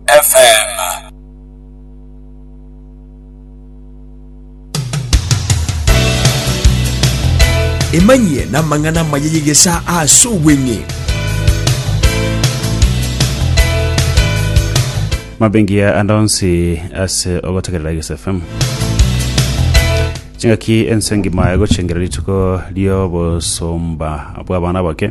FM. Emanyie namang'ana amaya y'egesaa ase obweng'e. mabengiya ande onsi ase ogotegerera Iges FM chingaki ense engima egochengera rituko riobosomba bw'abana bake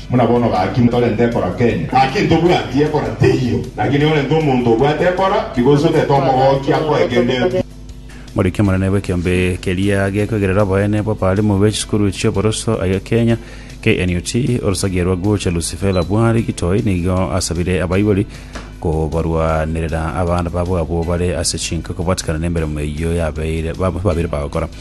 Buna bono gaki torente ekora Kenya, gaki ntobwati ekora teiyo, gaki niyorente omonto obwate ekora, tiga osogete omogokia akoe kende eki. Moriki omonene bw'ekeombe keria gekwegerera oboene bw'abalimu be chisukuru chi'oboroso aye Kenya, KNUT, Orosagia rwa Guche Lucifela Bwari Gitoi nigo asabire abaibori kobarwanerera abana babo abwo bare ase chinka kobwatikana nemeremo eyio yabeire babeire bagokora.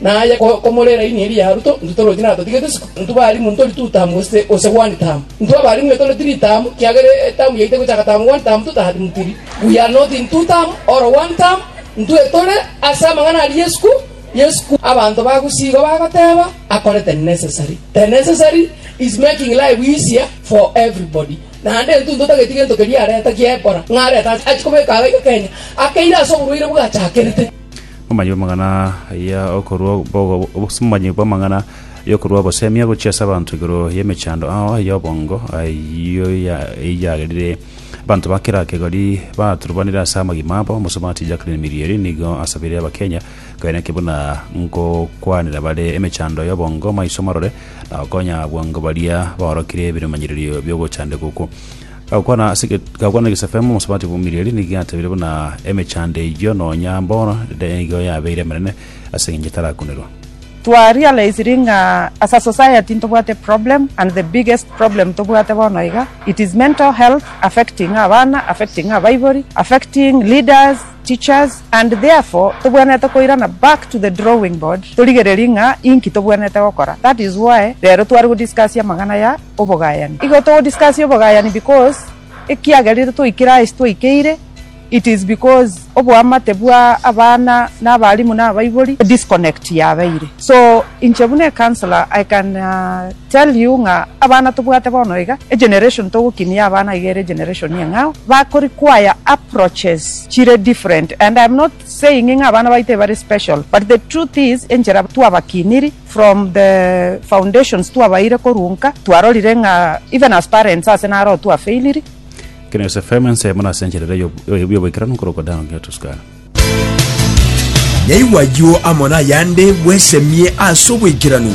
Na aye komorera ini eria ya Ruto, intwe torochi natotigete isiko, intwe barimu ntori tu tamu gose ose one tamu. Intwe abarimu nitore tiri tamu, kiagera etamu yaito egochaka tamu one tamu tu tamu tiri. We are not in two tamu or one tamu, intwe tore ase amang'ana aria isiko, isiko. Abanto bagosigwa bagoteba akore the necessary. The necessary is making life easier for everybody. Naende intwe ntotageti gento keria areta giekora, ng'a areta achie kobeka iga Kenya, akeire ase oborwaire bwachakerete. Omomanyi bw'amang'ana ya okorua omomanyi bw'amang'ana y'okorua obosemia gochia ase abanto igoro y'emechando ao y'obongo, ayio eyagerire abanto ba kera kegori baturubanire ase amagima abo. Omosomati Jacqueline Mirieri nigo asabire Abakenya koeneke buna ngokwanera bare emechando y'obongo maiso marore na gokonya bwango baria baorokire ebiromanyererio bi'ogochandeka okwo. Gakwana ase eget- gakwana egesafemu omosabati bw'omorieri, nigo giatebire buna emechando eyio nonya mbono nigo yabeire emenene, ase engencho etarakunerwa. Twa realisiri ng'a as a society ntobwate problem and the biggest problem tobwate bono iga it is mental health affecting abana, affecting abaibori, affecting leaders, teachers and therefore tobwenerete koirana back to the drawing board torigererie ng'a inki tobwenerete gokora that is why rero tware go discuss amang'ana ya obogayani. Igo to discuss obogayani because ekiagera ere toikire aye twaikeire it is because oboamate bwa abana na abalimu na abaibori disconnect yabeire so inche buna ecounselor I can tell you ng'a abana tobwate bono iga egeneration togokinia abana iga ere egeneration eng'ao bako require approaches chire different and I am not saying ng'a abana baito ebare special but the truth is enchera twabakiniri From the foundations twabaire korunka twarorire ng'a even as parents ase naro twafailiri. Kina Yose FM, ensemo nase encherera y'oboikeranu nkorokwa Down here to Sky. Yaigwa ayio amo nayande bwesemie ase oboikeranu.